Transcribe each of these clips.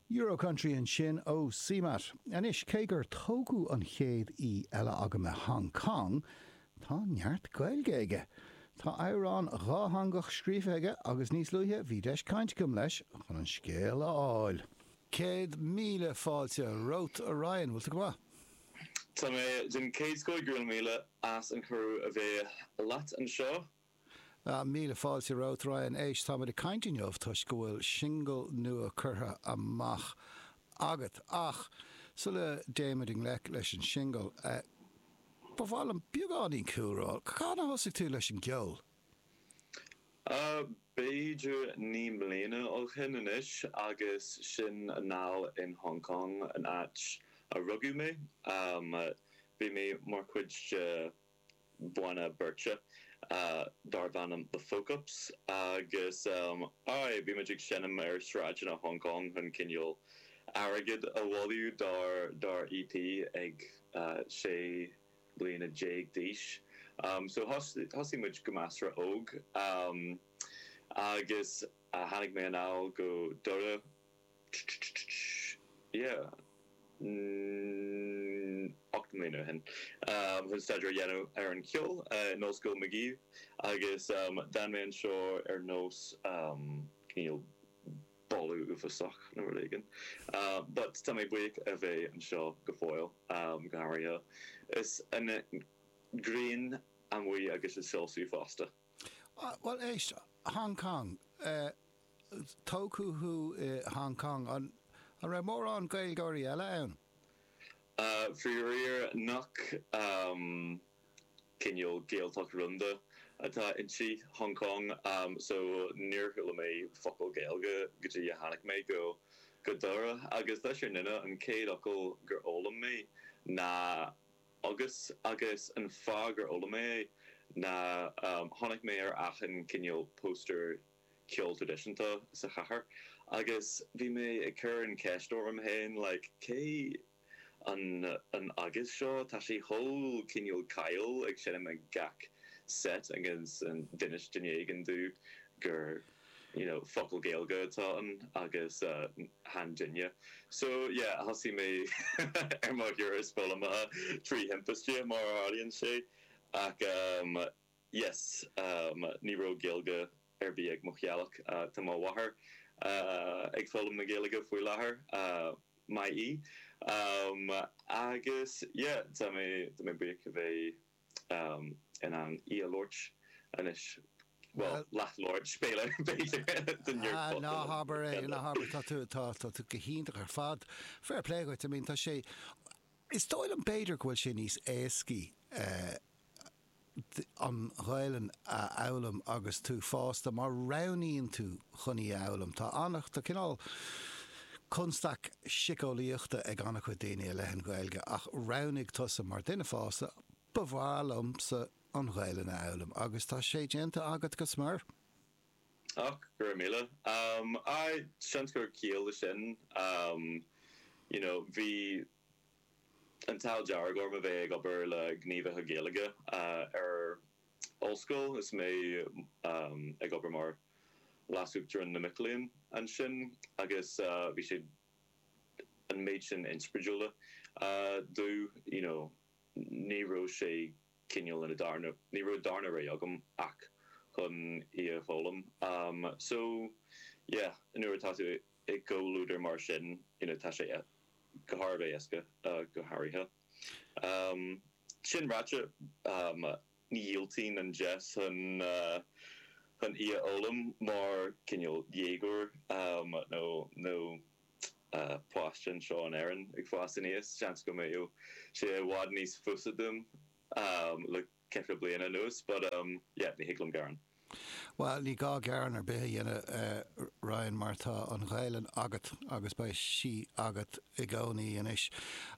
Eurocountry ansin ó CMAT. Anois, cé gur tógadh an chéad aoi eile agam i Hong Kong, tá neart Gaeilge aige. Tá amhrán dhátheangach scríofa aige agus níos luaithe bhí deis cainte agam leis chun an scéal a fháil. Céad míle fáilte romhat, a Ryan. Bhfuil tú go maith? Tá mé den chéad scoth. Go raibh míle as an cuireadh a bheith leat anseo. Míle fáilte romhat, Ryan H. Táimid ag caint inniu toisc go bhfuil singil nua curtha amach agat. Ach sula dtéimid i ngleic leis an singil, ba mhaith liom beagáinín cúlra. Cathain a thosaigh tú leis an gceol? B'fhéidir naoi mbliana ó shin anois agus sin anall in Hong Kong, an áit a rugadh mé. Bhí mé mar chuid de banna beirte darb ainm The Folk Ups agus, aye, bhí muid ag seinm ar shráideanna Hong Kong chun cineál airgid a bhailiú dár EP ag sé bliana déag d'aois. So, thosaigh muid go measartha óg agus tháinig mé anall go Doire, yeah, ocht mbliana ó shin, chun staidéar a dhéanamh ar an cheol in Ollscoil Magee agus d'fhan mé anseo ar nós cineál boladh uafásach nó rud éigin. But tá mé buíoch a bheith anseo go fóill, go háirithe is an ghrian amuigh agus í ag soilsiú fosta. Bhuel, éist, Hong Kong, tógadh thú i Hong Kong. An raibh mórán Gaeilgeoirí eile ann? Faraor nach cineál Gaeltacht rúnda atá inti Hong Kong, so níor chuala mé focal Gaeilge go dtí a tháinig mé go Doire. Agus tá sé ar ndóigh an chéad fhocal gur fhoghlaim mé ná agus agus an fáth gur fhoghlaim mé é ná chonaic mé ar achan cineál póstaer ceol traidisiúnta sa chathair agus bhí mé ag cur an cheist orm féin like cé an an agus seo tá sé chomh cineál cáiliúil ag seinm ag gach seit agus d'inis duine éigin domh gur you know, focal Gaeilge atá ann agus chan duine. So, yeah, thosaigh mé ar mo thuras foghlamaithe trí thimpiste, mar a tharlaíonn sé, ach ehm, yes, ehm, ní raibh Gaeilge ar bith ag mo theaghlach. Tá mo mháthair ag foghlaim na Gaeilge faoi láthair, maith í. Ehm, agus yeah, tá mé, tá mé buíoch a bheith. in ann í a labhairt anois, bhuel, leathlabhairt, spéile, b'fhéidir, den iarchot ina thír eile. Ná habair, tá tú, tá tú go hiontach ar fad. Fair play dhuit, I mean, tá sé, is dóigh liom, b'fhéidir go bhfuil sé níos éascaí an Ghaelainn a fhoghlaim agus tú fásta, má roghnaíonn tú chun í a fhoghlaim. Tá cineál constaic siceolaíochta ag an-chuid daoine i leith na Gaeilge ach roghnaigh tusa, mar duine fásta, Ba mhaith liomsa an Ghaelainn a fhoghlaim agus tá sé déanta agat go smior. Och, go raibh míle. Aye, seans gur ciall leis sin, you know, bhí an t-ádh dearg orm a bheith ag obair le gníomhaithe Gaeilge ar Ollscoil is mé ag obair mar leasuachtarán na mac léinn ansin agus bhí sé an méid sin inspioráidiúla domh you know ní raibh sé cineál in a darna, ní raibh darna rogha agam ach chun í a fhoghlaim so yeah nuair atá tú i gcomhluadar mar sin you know tá sé go thar a bheith éasca go háirithe. Sin ráite, ní dhiúltóinn an deis chun í a fhoghlaim mar chineál dhéagóir nó páiste anseo in Éirinn ag fás aníos. Seans go mbeadh sé i bhfad níos fusa dom le ceithre bliana anuas but um yeah ní thig liom gearán. Bhuel, ní gá gearán ar bith a dhéanamh, a Ryan, mar tá an Ghaelainn agat agus beidh sí agat i gcónaí anois.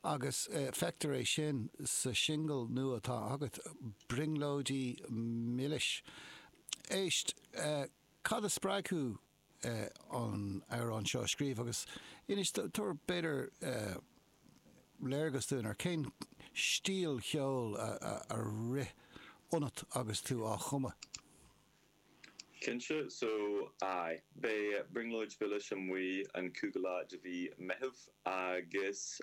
Agus feictear é sin sa singil nua atá agat, 'Brionglóid Mhilis' Éist, cad a spreag thú? an t-amhrán seo a scríobh agus inis, tabhair b'fhéidir léargas dúinn ar cén stíl cheoil a rith ionat agus tú á chumadh. Cinnte, so aye, beidh brionglóid mhilis amuigh an cúigiú lá de mhí Meithimh agus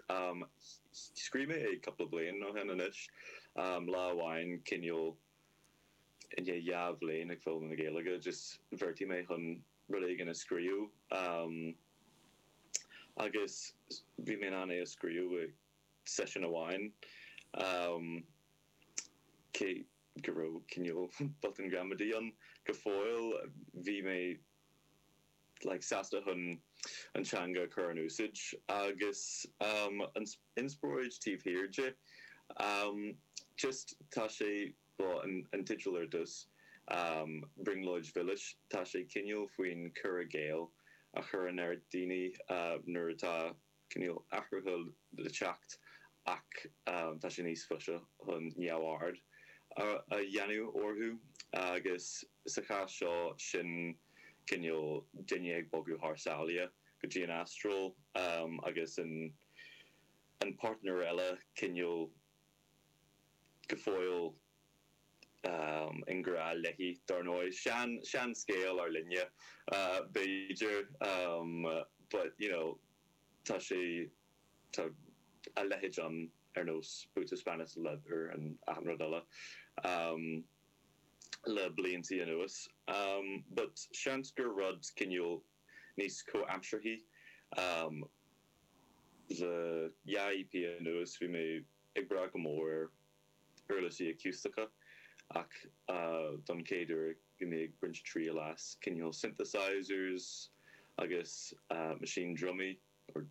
scríobh mé é cúpla bliain ó shin anois, lá amháin, cineál. I ndiaidh dhá bhliain ag foghlaim na Gaeilge, just bheartaigh mé chun rud éigin a scríobh. Agus bhí mé in ann é a scríobh i seisiún amháin, cé go raibh cineál botún gramadaí ann. Go fóill, bhí mé sásta chun an teanga a chur in úsáid agus an inspioráid taobh thiar di. Just tá sé, bhuel, an teideal ar dtús, Brionglóid Mhilis, tá sé cineál faoin cur i gcéill a chuireann ar dhaoine nuair atá. Cineál athruithe le teacht ach tá sé níos fusa chun neamhaird a dhéanamh orthu agus sa chás seo sin cineál duine ag bogadh thar sáile go dtí an Astráil agus an páirtnéir eile cineál go fóill i ngrá léi, dár ndóigh. Sean, sean scéal ár linne, b'fhéidir, but, you know, tá sé, tá a leithéid ann ar nós Boots of Spanish Leather and achan rud eile le blianta anuas. But seans gur rud cineál níos comhaimseartha. An dá EP anuas bhí mé ag brath go mór ar. uirlisí aciústacha, ach don chéad uair go mbím ag baint triail as cineál synthesizers agus machine drumaí, or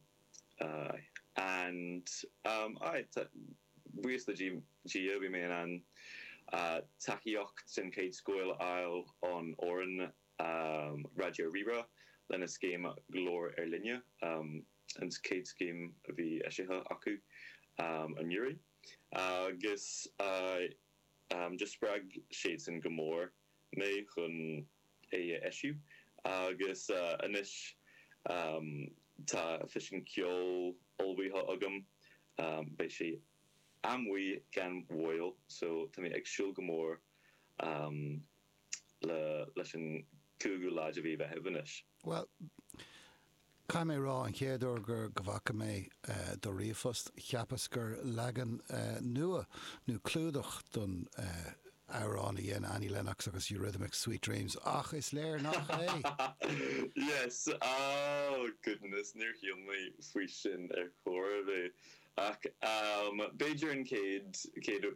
aye. And um aye, ta, buíochas le Dia, bhí mé in ann tacaíocht den chéad scoth a fháil ó fhoireann Raidió Rí-Rá lena scéim Glór ár Linne, um an chéad scéim a bhí eisithe acu anuraidh. Agus do spreag sé san go mór mé chun é a eisiú. Agus anois tá físeán ceoil ullmhaithe agam. Beidh sé amuigh gan mhoill so tá mé ag súil go mór le leis an gcúigiú lá de mhí Mheithimh anois. Bhuel, caithfidh mé a rá, an chéad uair gur, go bhfaca mé do ríomhphost, cheapas gur leagan nua, nó clúdach don amhrán a dhein Annie Lennox agus Eurythmics, Sweet Dreams, ach is léir nach é! Yes! Oh, goodness, níor shíl mé faoi sin ar chor ar bith. Ach b'fhéidir an chéad, chéad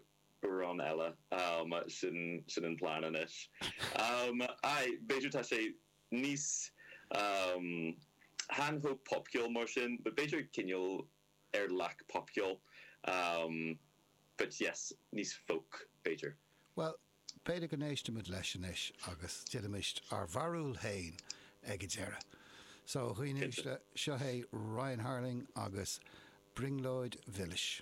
Amhrán eile. Sin an plean anois. Aye, b'fhéidir tá sé níos chan chomh popcheoil mar sin but b'fhéidir cineál ar leac popcheoil but yes, níos folk, b'fhéidir. Bhuel, b'fhéidir go n-éistfimid leis anois agus déanfaimid ár mbarúil féin ag a deireadh. So, a dhaoine uaisle, seo é Ryan Harling agus Brionglóid Mhilis.